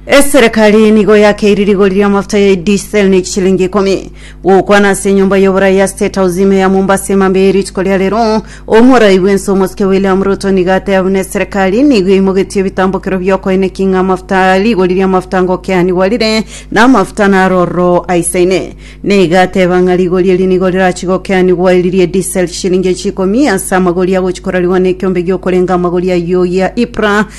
Eserekari nigo yakeiri rigori ri'amafuta ya diesel ne chishilingi ikomi gokwana ase enyomba y'oborai ya State House ime ya Mombasa emambia ye rituko ria rero. Omorai bw'ense omosike William Ruto nigo ateba buna eserekari nigo eimogetie ebitambokero bi'okoenekia ng'a amafuta rigori ri'amafuta ngokeanigwa rire na amafuta naro ororo aisaine. Nigo ateba ng'a rigori eri nigo rirachi gokeanigwa eri rie diesel chishilingi echi ikomi ase amagori agochi korarigwa na ekiombe gi'okorenga amagori ayio gia IPRA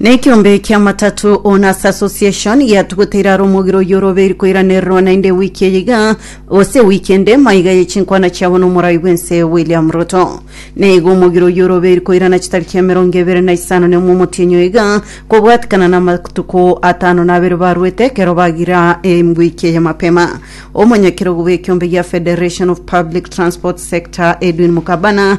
Nekiombe kiamatatu Owners Association giatuguteire aro omogiro oyio orobeiri koiranererwa naende ewiki eye iga gose ewiki ende maiga ye chinkwana chiabo na omorai bwense William Ruto. Naigo omogiro oyio orobeiri koirana chitariki emerongo ebere na isano na imwe omotienyi oyo iga kobwatikana na amatuko atano na abere barwete ekero bagira ewiki eye mapema. Omonyakerogo bw'ekiombe gia Federation of Public Transport Sector Edwin Mukabana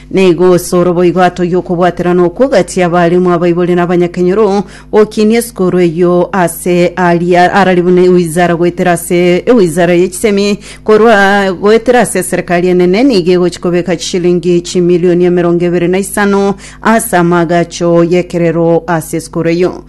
Na igo ase oroboigo ato y'okobwaterana okwo gati abaremu abaibori na abanyakenyoro, gokinia esukuru eyio ase aria arari buna ewizara goetera ase ewizara ye chisemi, korwa goetera ase eserekari enene nigo egochia kobeka chishilingi chimilioni emerongo ebere na isano ase amaagacho y'ekerero ase esukuru eyio.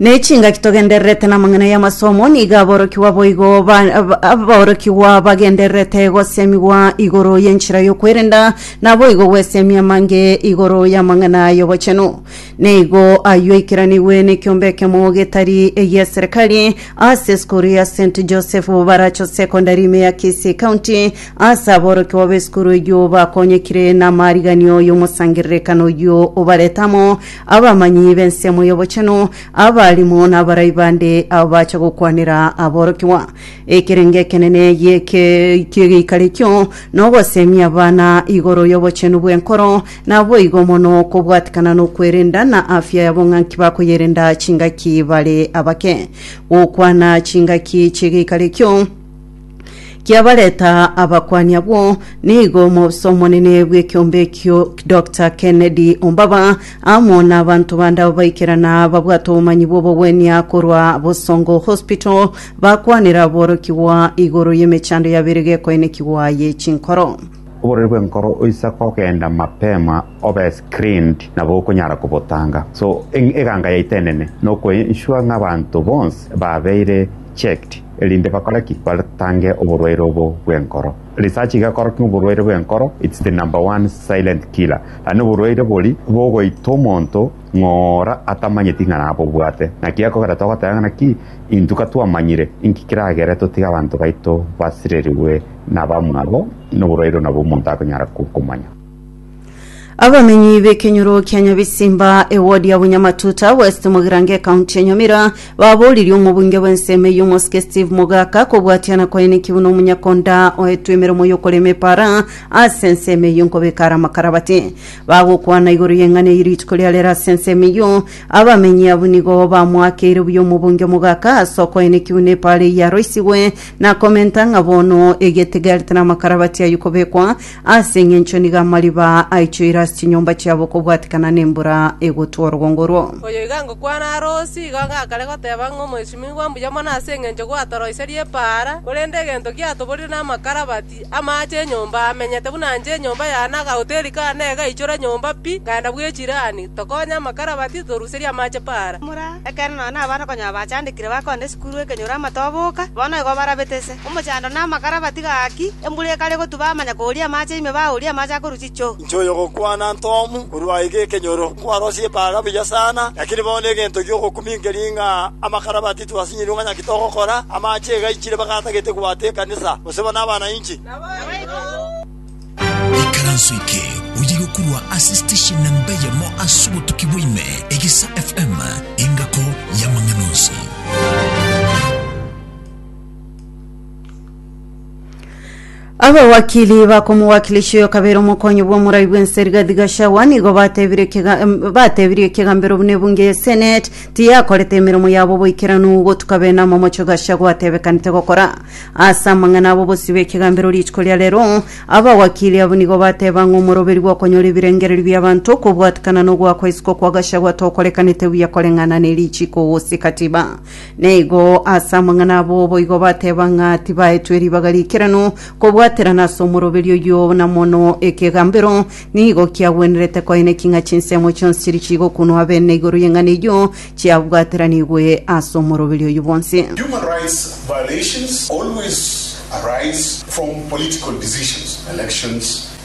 nechingaki togendererete namang'ana y'amasomo nigo aborokigwa boigo ba- ab- aborokigwa bagendererete gosemigwa igoro y'enchera y'okwerenda naboigo gwesemia amange igoro y'amang'ana y'obochenu nigo ayio aikeranigwe nekiombe ekemo getari egiaserekari ase esukuru ya st joseph baracho secondary ime ya kisii county ase aborokigwa b'esukuru eyio bakonyekire namariganio y'omosangererekano oyio obaretamo Abamanyi b'ensemo y'obochenu, abarimo, na abarai bande abacha gokwanera aborokigwa. Ekerengo ekenene ki'egeikaro ekio nogoseemia abana igoro y'obochenu bw'enkoro, naboigo mono okobwatikana nokwerenda na afya yabo ng'a nki bakoyerenda chingaki bare abake. Gokwana chingaki chi'egeikaro ekio, kiabareta abakuani abwo, nigo omobisa omonene bw'ekeombe ekio Doctor Kennedy Ombaba amo n'abanto bande abo baikerana babwate obomanyi bw'obogwenia korwa Bosongo Hospital bakwanera borokigwa igoro y'emechando yabeire gekoenekigwa ye chinkoro. Oborori bw'enkoro oisa kogenda mapema obe screened nabo okonyara kobotanga. So eganga yaito enene nokoensure ng'a abanto bonsi babeire checked, erinde bakore ki? Batange oborwaire obo bw'enkoro. Research igakora ng'a oborwaire bw'enkoro it's the number one silent killer. Yaani oborwaire bori bogoita omonto ng'ora atamanyeti ng'a nabobwate. Naki ekogera togoteba ng'a naki intwe katwamanyire inki kiragere totige abanto baito basirerigwe nabamwabo noborwaire onabwo omonto akonyara komanya. Abamenyi b'ekenyoro kia Nyabisimba, ewodi ya Bunyamatuta West, Mogirango, ekaunti ya Nyamira, baboririe omobunge bw'ensemo eyio omosike Steve Mogaka kobwatiana kwaye naki buna omonyakonda oetwe emeremo y'okorema epaara ase ensemo eyio nkobeka are amakarabati. Bagokwana igoro y'eng'ana eyio rituko ria rero ase ensemo eyio, abamenyi abwo nigo bamoakeire buya omobunge Mogaka ase okoe naki buna epaara eyio yaroisigwe na komenta ng'a bono egete gari tari amakarabati ayio kobekwa Ase engencho nigo amariba aa aichoire ase chinyomba chiabo kobwatikana nembura egotwa orwongo orwo. Oyo iga ngokwana are Usi, igo gakare goteba ng'a omwesimigwa mbuya mono ase engencho gwatoroiserie epaara, korende egento giatoborire namakarabati, amaache enyomba amenyete buna nche enyomba yane agahoteri kane egaichora nyomba pi, ngaenda bw'echirani, tokonye amakarabati, toruserie amaache paara. Mura, ekeene nonya nabana konya abachandekire bakonda esukuru ekenyoro amatoboka, bono igo barabete ise. Omochando na amakara batiga gaki, embura ekare gotuba amanya kooria amache ime baooria amache akorwa chichoo. Inche oyogokwana Ntomu korwa iga ekenyoro, nkwarosie epaga buya sana, lakini bono egento giogokumia nkeria ng'a amakara bati twasinyirwe ng'a naki togokora, amache iga aichire mpaka atagete gwata ekanisa, gose bono abana inche. Ikaranso eke oyige korwa ase station namba eyemo ase obotuki bwa ime, Egisa FM, engako y'amang'ana onsi. abawakili bakomowakilesha oyo kabere omokonyi bw'omorai bw'ense rigathi gachagua nigo batebirie kega- em, batebirie kegambero buna ebunge ya senate tiyakorete emeremo yabo boikeranu gotuka bene amamocho gachagua atebekanete gokora ase amang'ana abo bosio bw'ekegambero rituko ria rero abawakili abwo nigo bateba ng'a omoroberi bw'okonyora ebirengererio bi'abanto okobwatekana nogoakwa isiko kwa gachagua tokorekanete buya koreng'ana ne richiko gose katiba Naigo ase amang'ana abo boigo bateba ng'a tibaetwe ribaga riikeranu kobwaterana ase omoroberio oyio, na mono ekegambero nigo kiagwenerete koineki ng'a chinsemo chionsi chiri chigokunwa abene igoro y'eng'ana eyio chiabwateranigwe ase omoroberio oyio bwonsi. Human rights violations always arise from political decisions, elections,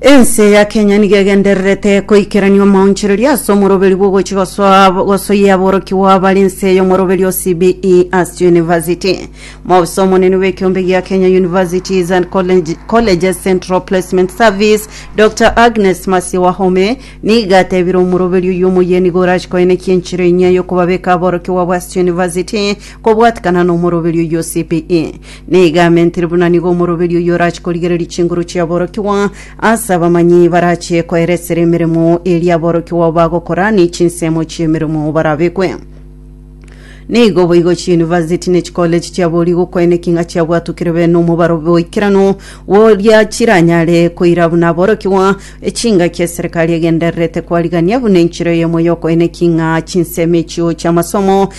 Ense ya Kenya nigo egendererete koikerania omaonchoreria ase omoroberi bw'ogochi gosoa gosoyia aborokigwa bare ense y'omoroberi o CBE as University. Mobisa omonene bw'ekiombe gia Kenya Universities and College- Colleges Central Placement Service Dr. Agnes Mercy Wahome nigo atebire omoroberi oyio omoyia nigo orache koenekia enchera enyia y'okobabeka aborokigwa abo ase University kobwatekana nomoroberi oyio o CBE. Nigo amentire buna nigo omoroberi oyio orache korigereria chinguru chi'aborokigwa ase abamanyi barache koeresera emeremo eria aborokigwa bagokora ne chinsemo chi'emeremo barabekwe. Nigo boigo chi'university ne chikoleji chiabori gokoena eking'a chiabwatukire be nomobaro bw'oikeranu boria chiranyare koira buna aborokigwa echingaki eserikari egendererete kwarigania buna enchera eyemo y'okoena eking'a chinsemo echio chi'amasomo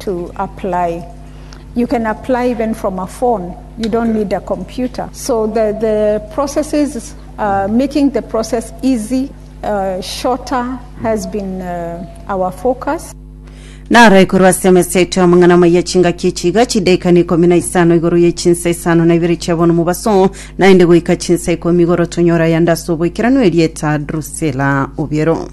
to apply. You can apply even from a phone. You don't need a computer. So the, the process is uh, making the process easy, uh, shorter has been uh, our focus. naro ikorwa ase emesa eto amang'ana amaya chingaki echiga chidaikani ikomi na isano igoro ye chinsa isano na ibere chia bono mobaso naende goika chinsa ikomi igoro tonyora yanda ase oboikeranu erieta drusela obiero